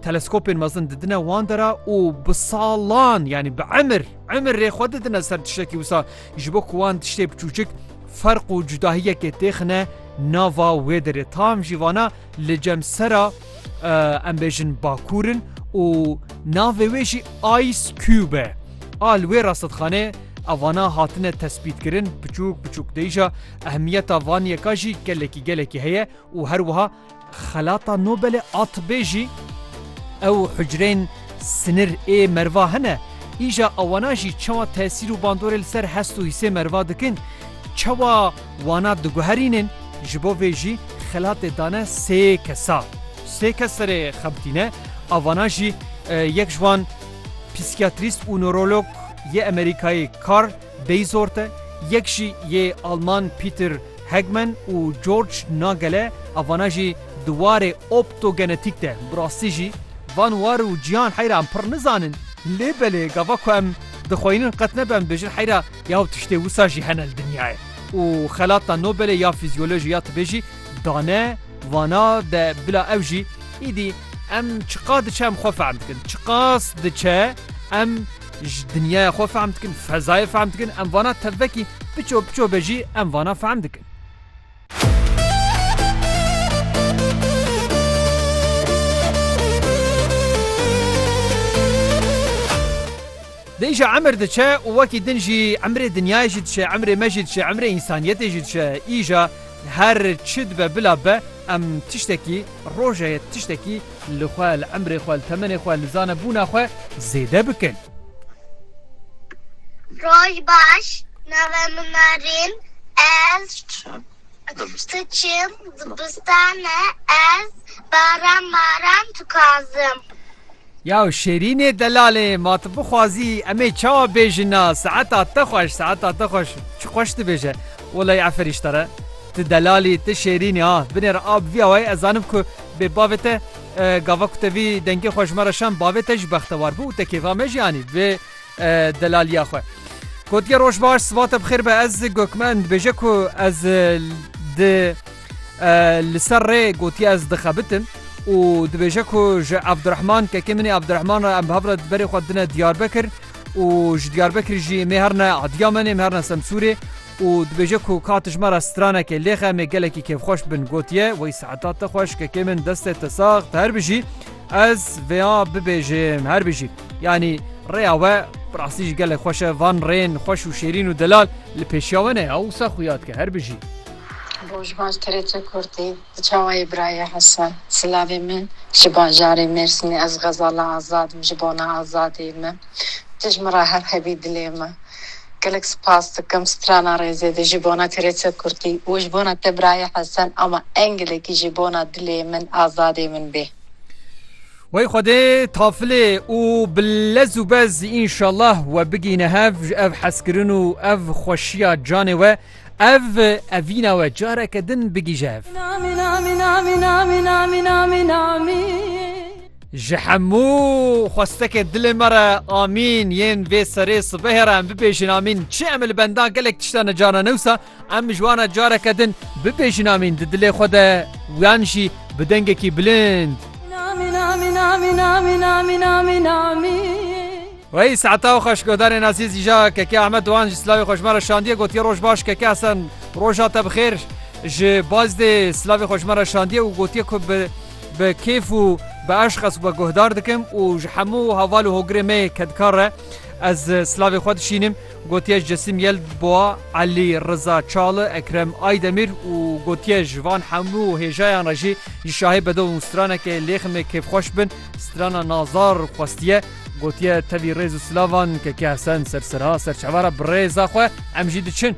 Teleskopên mezin didine wan dera û bi salan yanî bi emir emir rê xwe didine ser tiştekî wisa ji bo ku wan tiştê biçûçik ferq û cudahiyekê têxine nava wê derê tam jî vana li cem sera em bêjin bakurin û navê wê jî Ice Cube al wê rastedxanê evana hatine tespîtkirin biçûk biçûk deyja ehmiyeta van yeka jî gelekî gelekî heye û her wiha Xelata Nobelê a Tibê jî ew hucreyên sinir ê merva hene, îja wana jî çawa tesîr û bandorê li ser hest û hîsê merva dikin, çawa wana diguherînin, ji bo vê jî xelatê dane sê kesa. Sê kes serê xwe bitîne, a wana jî yek ji wan psîkiyatrîst û newrolog yê Amerîkayê Carl. Dei Sorte, yek jî yê Alman Peter Hegman û George Nagele a vana jî di warê optogenetîk de bi rastî jî van war û cîhan heyra em pirr nizanin lê belê gava ku em dixweynin qet nebe em dibêjin heyra ya ew tiştê wisa jî hene li dinyayê û xelata Nobelê ya Fîzyolojî ya Tibê jî dane vana de bila ew jî îdî em çiqas diçe em xwe fehm dikin çiqas diçe em Ji dinyaya xwe fehm dikin, fezayê fehm dikin, em vana tevvekî biço biço be jî em vana fehm dikin. Di îşa emir diçe û wekî din jî emrê dinyayê jî diçe, emrê me jî diçe, emrê însaniyetê jî diçe. Îşa her çi dibe bila be em tiştekî Roje ye tiştekî li xwe, li emrê xwe, li temenê xwe, li zanebûna xwe zêde bikin. Roj baş, navê min Narîn, ez diçim dibistane, ez baran baran dixwazim. Yaw Şêrînê delalê ma tu bixwazî em ê çawa bêjin na saeta te xweş saeta te xweş çi xweş dibêje welay efer îştare tu delalî tu Şêrînî ha binê re a bi vî awayî ez zanim ku bê bavê te gava ku te vî dengê xwe ji me re şand bavê te jî bextewar bû û te kêfa me jî anî vê delalîya xwe. Gotiye roj baş siva te bi xêr be ez Gökmen dibêje ku ez di Li ser rê gotiye ez dixebitim û dibêje ku ji Abdurehman kekê min ê Abdurehman re em bi hev re berê xwe dine Diyarbekir û ji Diyarbekirî jî em ê herin e Adiyamanê em ê herin e Semsûrê û dibêje ku ka tijme re stranekê lêxe em ê gelekî kêfxweş bin gotiye wey seheta te xweş kekê min destê te sax te her bijî ez vêya bibêjim her bijî yanî rêya we bi rastî jî gelek xweş e van rên xweş û şêrîn û delal li pêşiya we ne ya wisa xuya dike her bijî. Roj baş Terece Kurdî Di çawayê birayê Hesen. Silavê min ji bajarê Mêrsînê Ez xezala azad im ji bona azadiyê me tij min re her hebî dilê me Gelek spas dikim strana rêzê de ji bona Terece Kurdî û ji bona te birayê Hesen ama engelekî ji bona dilê min azadê min bê. Wey Xwedê tafilê û bi lez û bez înşallah we bigihîne hev ji ev hezkirin û ev xweşiya canê we. Ev evîna we careke din bigîje hev. Ji hemû xwestekê dilê me re amîn yên vê serê sibehê re em bibêjin amîn çi em li benda gelek tişta ne carna newsa em ji wana careke din bibêjin amîn di dilê xwe de wiyan jî bi dengekî bilind. Reis Etaw xweşguhdarên Ezîz îja Keke Ehmed Doan jî silavê xwe ji me re şandiye gotiye Roj baş Keke Hesen roja te bixêr ji Bazdê silavê xwe ji me re şandiye û gotiye ku bi bi kêf û bi eşq ez xwe guhdar dikim û ji hemû heval û hogirê me yê kedkar re ez silavê xwe dişînim gotiye Cesim Yelbua Elî Riza Çalı Ekrem Aydemir û gotiye ji van hemû hêjayan re jî ji şahê bedo û stranekê lêximê kêfxweş bin strana Nazar xwestiye Gotiye tevî rêz û silavan Keke Hesen sersera serçavara bi rêza xwe em jî diçin.